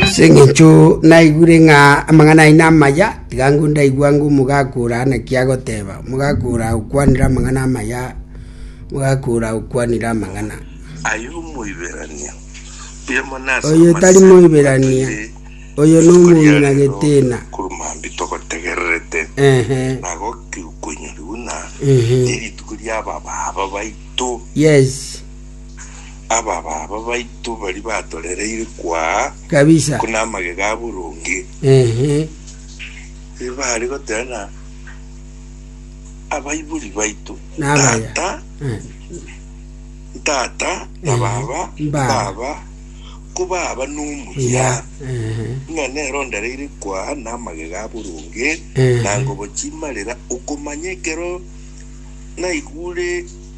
Ase engencho naigure ng'a amang'ana aino amaya, tiga ngwo ndaigwa ng'a omogaka oraa naki agoteba. Omogaka oraa okwanire amang'ana amaya, omogaka oraa okwanire amang'ana. Aye omoiberania, oyo mona ase Oyo tari amasemi moiberania, atoire oyo rituko nomouru ria na rero getena. korwa mambia togotegererete Ehe, na gokikonyorigwa na ehe, nerituko ria ababaaba baito yes. abababa baito baria batorereire kwaa kabisa. ko namagega a boronge. Ehe. Erio baare goteba na abaibori baito, Nabaya. Tata, Eh, ntata, na Ehe. baba, Mbaba. baba, ko baba nomuya. ya. Ehe. Ng'a nere ondereire kwaa namagega a boronge, Ehe. na ngobo chimarera, okomanya ekero naigure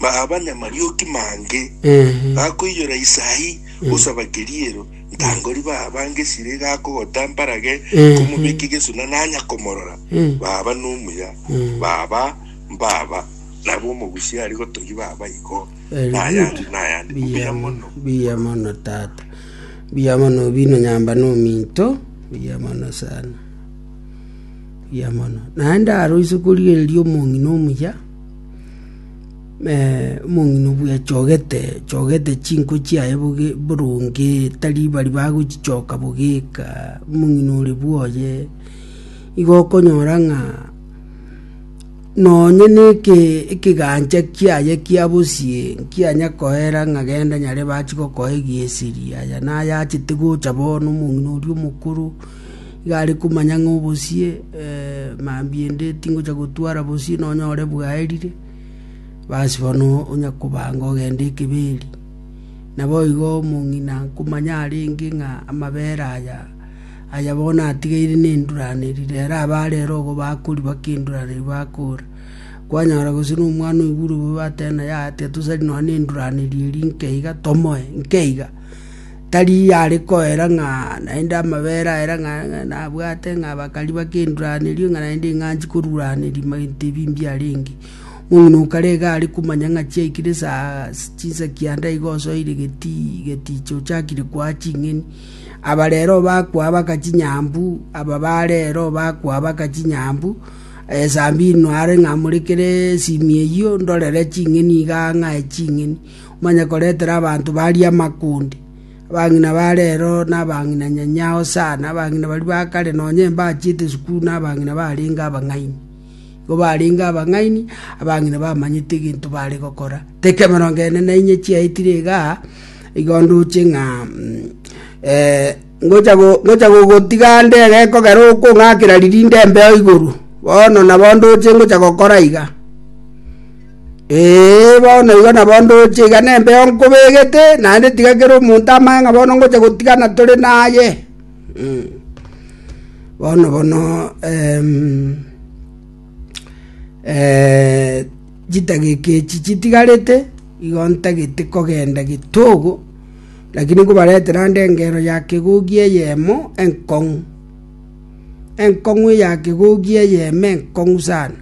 Baaba namarioki mange, gakoiyora isaahi gosaba keriero, ntangori baaba ngesire gakogota mbarage komobeke gesuna nanya komorora. Baaba nomuya, baaba mbaaba, nabo omogusi are gotogi baaba igo, nayande nayande. Mbuya mono. Mbuya mono tata. Mbuya mono obino nyamba nominto. Mbuya mono sana. Mbuya mono. Naende aro ise korigereria omong'ina omuya. Omong'ina obwechogete chogete chinko chiaye boronge, tari bari bagochichoka bogeka, omong'ina ore bwoye, igo okonyora ng'a nonye na ekegancha kiaye kia bosie nkianya koera ng'a genda nyarebe achigokoa egeseria, aya naye achete gocha bono omong'ina oria omokoro. Iga are komanya ng'a obosie mambia ende tingocha gotwara bosie nonyore bwaerire, basi bono onya kobanga ogende ekebeeri. Naboigo omong'ina nkomanya arenge ng'a amabere aya aya bono atigeire nenduraneri, rero abare ere ogo bakori bakenduraneri bakora. Kwanyora gose na omwana oigure obobe ateba naye aa tiga tosari nonya nenduraneri eri nkeiga tomoe, nkeiga. Tari are koera ng'a naende amabera aye ng'a nabwate, ng'a bakari bakenduraneri, ng'a naende ing'anchi koruraneri ebinto ebi mbiarenge. Omong'ina o kare iga are komanya ng'a chiaikire esaa chinsa kianda iga osoire getii getiichi ochakire koa ching'eni. Aba rero bakoabaka chinyambu, aba ba rero bakoabaka chinyambu, esaa mbiino are ng'a morekere esimi eyio ndorere ching'eni igaa ng'ae ching'eni. omanye koretera abanto baria amakundi, abang'ina ba reero, na abang'ina nyanyao sana, abang'ina baria ba kare, nonya embachiete esukuru, na abang'ina barenge abang'aini. Igo barenge abang'aini, abang'ina bamanyete egento bare gokora. Tekemerongo ene nainye chiaetire igaa, igo ndoche ng'a Ngocha gogotiga ande gekogera okong'akera ririnde embeo igoro, bono nabo ndoche ngocha gokora iga. Ee, bono igo nabo ndoche iga nembeo nkobegete, naende tiga kera omonto amanye ng'a bono ngocha gotigana tore naye. Bono bono chidageka echi chitigarete, igo ntagete kogenda getogo. Lakini nkobaretera ande engeero ya kegogi eyemo enkong'u, enkong'u eya kegogi eyemo enkong'u sana,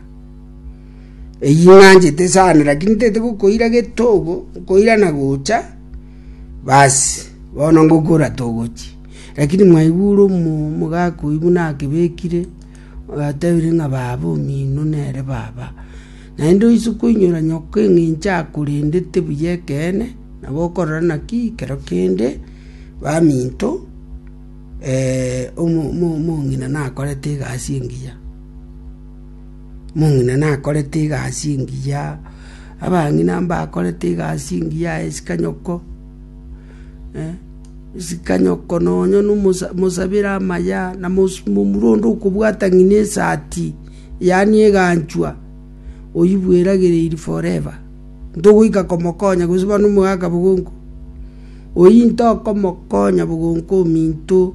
eyio ing'anchete sana, lakini ntete gokoira getogo, nkoira na gocha, basi bono ngokora togochia. Lakini mwaigure omomo gakoigwa nakebekire, agatebire ng'a baba omino nere baba. Naende oise koinyora nyoka eng'encho akorendete buya ekeene. Nabo okorora naki ekero kende baminto omong'ina nakorete egasi engiya, omong'ina nakorete egasi engiya, abang'ina mbakorete egasi engiya aye isiko nyoko, isiko nyoko nonya na omosa mosabere amaya, na mosu momura onde okobwata ng'a na esati, yaani eganchwa, oywo bweragereiri forever. ntogoika komokonya gose buna omogaka bogongo, oyio ntokomokonya bogongo ominto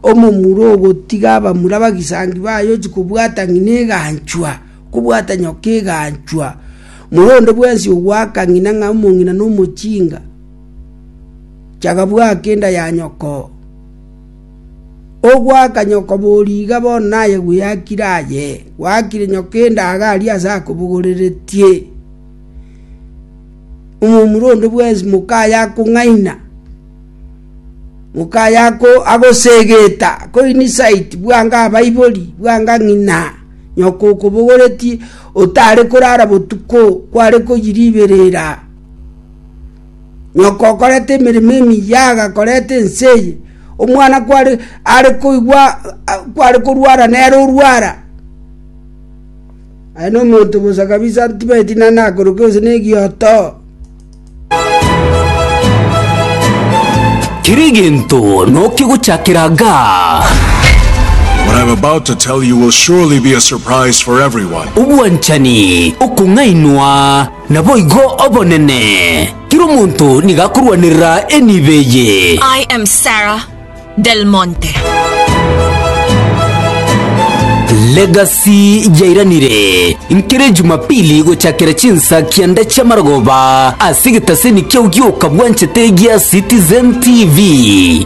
omomura ogotiga abamura abagisangio baye ochia kobwata ng'ina eganchwa, kobwata nyoka eganchwa, mura onde bwensi ogoaka ng'ina ng'a omong'ina nomochinga, chaka bwaa kenda ya nyokoo. “Ogwaka nyoko bo riga bono naye gweyakire aye, gwakire nyoko endaga aria aase akobogoreretie. Omomura onde bwensi moka aye akong'aina, moka aye agosegeta, akoinsult, bwango abaibori, bwango ng'ina nyoko okobogoretie, otare korara botuko, kware koyiriberera. Nyoko okorete emeremo emiya agakoreta ense eye, omwana kware are koigwa kware korwara nere orwara. Aye nomonto bosa kabisa ntibeti naende akoruka onsi negioto. Kera egento nokegochakera gaa. What I'm about to tell you will surely be a surprise for everyone. Obwanchani, okong'ainwa. Naboigo obonene, kera omonto nigo akorwanerera enibo eye. I am Sarah Del Monte. Legacy yairanire nkere Jumapili gochakera chinsa kianda chi'amarogoba ase egetaseni kiao gi'okabwanchete gia Citizen TV.